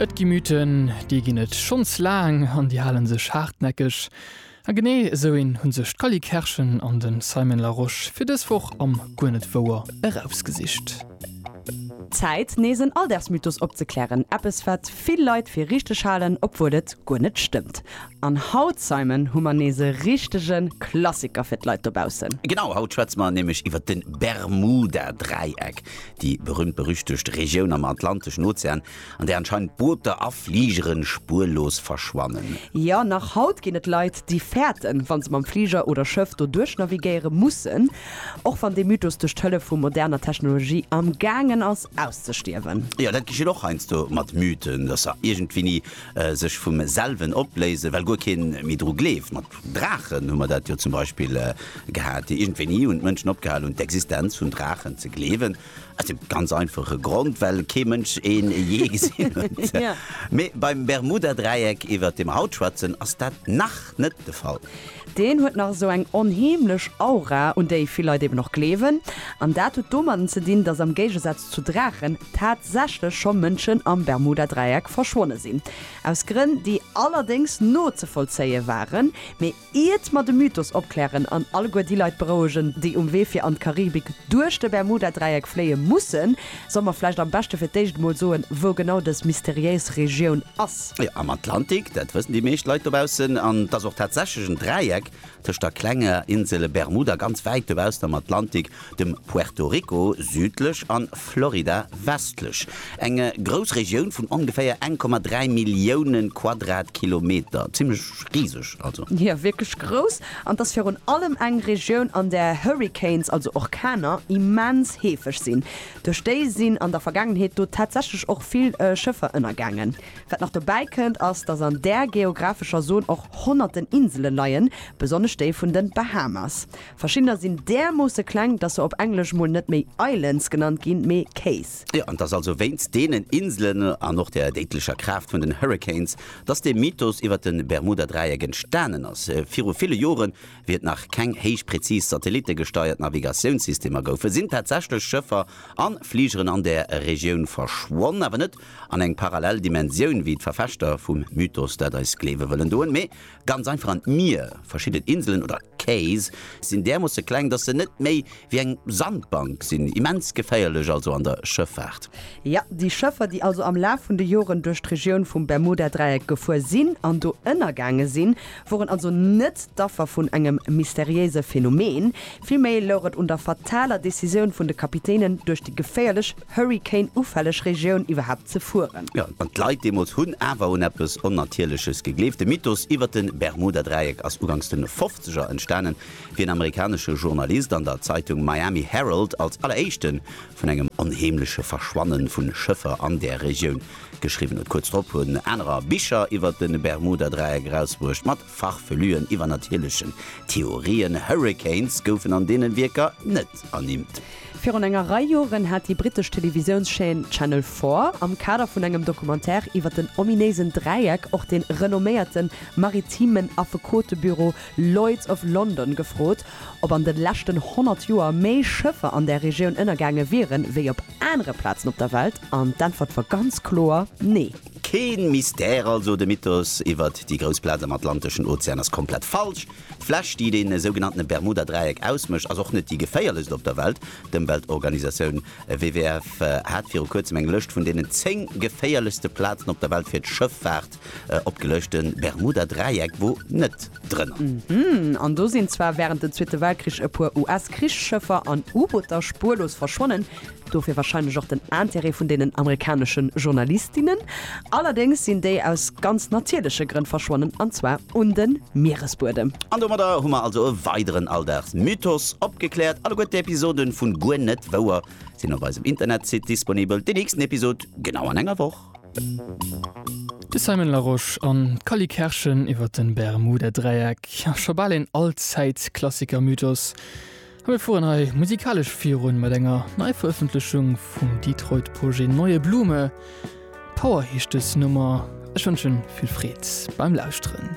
Et gi Mythen, déi ginn et schonns laang an déi hale sech haartnäckeg. A genee esou een hu sech d'Cally Kerschen an de Simon Larosche fir dës Woch am Guer net wouer erausgesicht. Zäit, nees en Alldagsmythos opzeklären, eppes, wat vill Leit fir richteg halen, obwuel et guer net stëmmt. An haut, Simon, hu mer nees e richtege Klassiker fir d'Leit dobaussen. Genau, haut schwätze mer nämlech iwwer de Bermuda-Dräieck. déi berühmt-berüchtegt Regioun am Atlanteschen Ozean, an där anscheinend Booter a Fligere spuerlos verschwannen. Jo, nach haut ginn et Leit, déi fäerten, wa se mam Fliger oder Schëff do duerchnavigéiere mussen, och wann dee Mythos duerch d'Hëllef vu moderner Technologie am Gaangen ass auszestierwen. Jo, dat geschitt och heiansdo mat Mythen, dass se iergendwéini sech vum selwen opléisen, well guer kee méi dru gleeft. Draachen hu mer dat jo zum Beispill gehat, déi iergendwéi ni hunn d'Mënschen opgehal hunn d'Existenz vun Draachen ze gleewen, aus deem ganz einfache Grond, well kee Mënsch ee jee gesinn huet. Mee beim Bermudadräieck, iwwert dee mer haut schwätzen, ass dat nach net de Fall. Deen huet nach esou eng onheemlech Aura, un déi vill Leit eben och gleewen. An dat huet domatten ze dinn, datt am Géigesaz zu Draachen tatsächlech scho Mënschen am Bermudadräieck verschwonne sinn. Aus Grënn, déi allerdéngs nozevollzéie waren, mee iert mer de Mythos opklären an alleguer déi Leit berouegen, déi um Wee fir an d'Karibik duerch de Bermuda-Dräieck fléie mussen, solle mer vläicht am beschte fir d'éischt emol soen, wou genau dës mysteriéis Regioun ass. Jo, am Atlantik, dat wëssen déi meescht Leit dobaussen. An et ass och tatsächlech en Dräieck, tëscht der klenger Insel Bermuda ganz wäit dobaussen am Atlantik, dem Puerto Rico, südlech, an Florida, westlech, eng grouss Regioun vun ongeféier 1,3 Millioune Quadratkilometer, zimlech riseg also. Jo, wierklech grouss. An 't ass virun allem eng Regioun, an där Hurricanes, also Orkaner, immens heefeg sinn. Duerch déi sinn an der Vergaangenheet do tatsächlech och vill Schëffer ënnergaangen. Wat nach dobäi kënnt, ass, dass an där geographescher Zon och honnerten Insele leien, besonnesch déi vun den Bahamas. Verschiddener sinn därmoosse kleng, dass se op Englesch mol net méi Islands genannt ginn, mee Cays. Jo, an et ass also wéinst deenen Inselen an och der déidlecher Kraaft vun den Hurricanes, dass dee Mythos iwwert de Bermuda-Dräieck entstanen ass. Viru ville Joren, wéi et nach keng héich präzis satellittegesteiert Navigatiounssystemer goufen, sinn tatsächlech Schëffer an Fligeren an där Regioun verschwonn, awer net an eng parallel Dimensioun wéi d'Verfechter vum Mythos dat eis gleewe wëllen doen, mee ganz einfach an d'Mier. Verschidden Inselen oder Cays sinn därmoosse kleng, dass se net méi wéi eng Sandbank sinn. Immens geféierlech also an der Schëffaart. Jo, déi Schëffer, déi also am Laf vun de Joren duerch d'Regioun vum Bermuda-Dräieck gefuer sinn an do ënnergaange sinn, woren also net d'Affer vun engem mysteriéise Phänomen. Villméi louch et un der fataler Decisioun vun de Kapitänen, duerch déi geféierlech Hurrikan-ufälleg Regioun iwwerhaapt ze fueren. Jo, an d'Leit deemools hunn awer un eppes Onnatierleches gegleeft. De Mythos iwwer de Bermuda-Dräieck ass uganks de Fofzeger entstanen, wéi en amerikanesche Journalist an der Zeitung Miami Herald als alleréischte vun engem onheemleche Verschwanne vu Schëffer an där Regioun geschriwwen huet. Kuerz drop hunn anerer Bicher iwwer de Bermuda-Dräieck erausbruecht, mat Farfelüen, iwwernatierlechen Theorien, Hurricanes goufen an deenen Wierker net ernimmt. Virun enger Rei Joren hat déi brittesch Televisiounschaîne Channel Four am Kader vun engem Documentaire iwwer den ominéisen Dräieck och de renomméierten maritimen Affekotebüro Lloyd's of London gefrot, ob an de leschten 100 Joer méi Schëffer an där Regioun ënnergaange wieren, wéi op anere Plazen op der Welt. An d'Äntwert war ganz kloer, Nee! Keen Mystère also, de Mythos iwwert déi grouss Plaz am atlanteschen Ozean ass komplett falsch. D'Fläch, déi dee sougenannten Bermuda-Dräieck ausmécht, ass och net déi geféierlechst op der Welt. D'Ëmweltorganisatioun WWF hat viru kuerzem eng Lëscht vun deenen 10 geféierlechste Plazen op der Welt fir d'Schëffaart opgeluecht. De Bermuda-Dräieck wor net drënner. An do sinn zwar wärend dem Zweete Weltkrich e puer US-Krichsschëffer an U-Booter spuerlos verschwonnen, Dofir wahrscheinlech och den Intérêt vun deenen amerikaneschen Journalistinnen. Allerdéngs sinn déi aus ganz natierleche Grënn verschwonnen, an zwar un de Mieresbuedem. An domadder hu mer also e weideren Alldagsmythos opgekläert. Alleguer d'Episoden vu Guer net wouer sinn op eisem Internetsite disponibel. Deen nächsten Episod genau an enger Woch. De Simon Larosche an d'Cally Kerschen iwwer de Bermuda-Dräieck, scho bal een Allzäitklassikermythos. A mir fueren hei musikalesch virun mat enger Neiverëffentlechung vum Detroit Projet Neue Blume. Power heescht dës Nummer. Ech wënschen vill Freed beim Lauschteren.